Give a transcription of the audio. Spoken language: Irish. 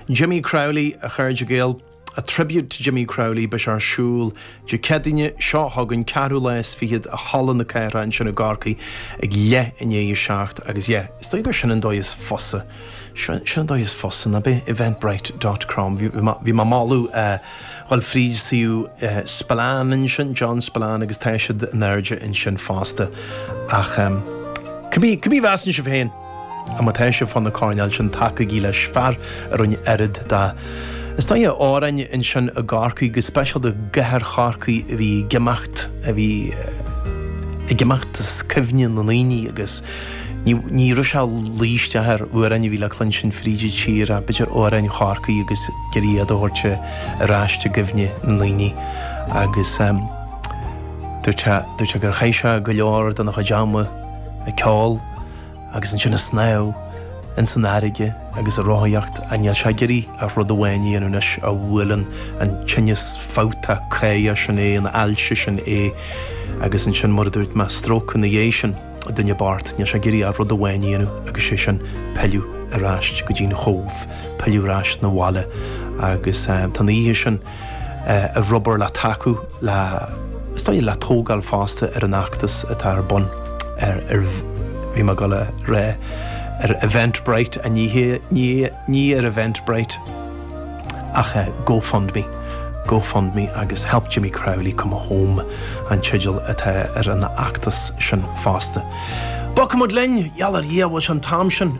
Jimmy Crowley, a chairde Gael, A tribute to Jimmy Crowley beidh sé ar siúl Dé Céadaoine seo chugainn, 4ú lá is fichead, i Halla na Cathrach ansin i gCorcaigh ag leith i ndiaidh a seacht agus yeah, is dóigh gur sin an dóigh is fusa, sin an dóigh is fusa, ná bith? Eventbrite dot com Bhí, bhí mé ag moladh a dhul fríd suíomh Spillane ansin, John Spillane agus tá siad in airde ansin fosta ach um, cibé, cibé a mheasann sibh féin? A má tá sibh fá na coirnéil sin tacaigí leis, fear a rinne oiread dá istoíche amhráin ansin i gCorcaigh, go speisialta i gcathair Chorcaí a bhí ag imeacht, a bhí ag imeacht as cuimhne na ndaoine agus ní raibh sé ag luí isteach ar amhráin a bhí le cluinstin fríd an tír ach b'fhéidir amhráin Chorcaí agus iad a thabhairt ar ais i gcuimhne na ndaoine agus dúirt sé gur chaith sé go leor dena chuid ama ag ceol agus ansin ag snámh ins an fharraige agus ag rothaíocht ach níl sé ag iarraidh ach rud amháin a dhéanamh anois ó bhuail an tinneas fabhtach caora sin é an ailse sin é agus ansin mar a dúirt mé stróc ina dhéidh sin duine bocht níl sé ag iarraidh ach rud amháin a dhéanamh agus sé sin pilleadh ar ais go dtí an Chóbh pilleadh ar ais na bhaile agus tá an oíche sin Ar obair le tacú le, is dóigh, le tógáil fosta ar an fheachtas atá ar bun ar, ar, bhí mé ag gabháil a rá, ar Eventbrite, a, ní hé, ní, ní ar Eventbrite ach ar GoFundMe, GoFundMe agus Help Jimmy Crowley Come Home an teideal atá ar an fheachtas sin fosta. Bogfaimid linn! Yallah, yeah, bhuel, seo an t-am sin.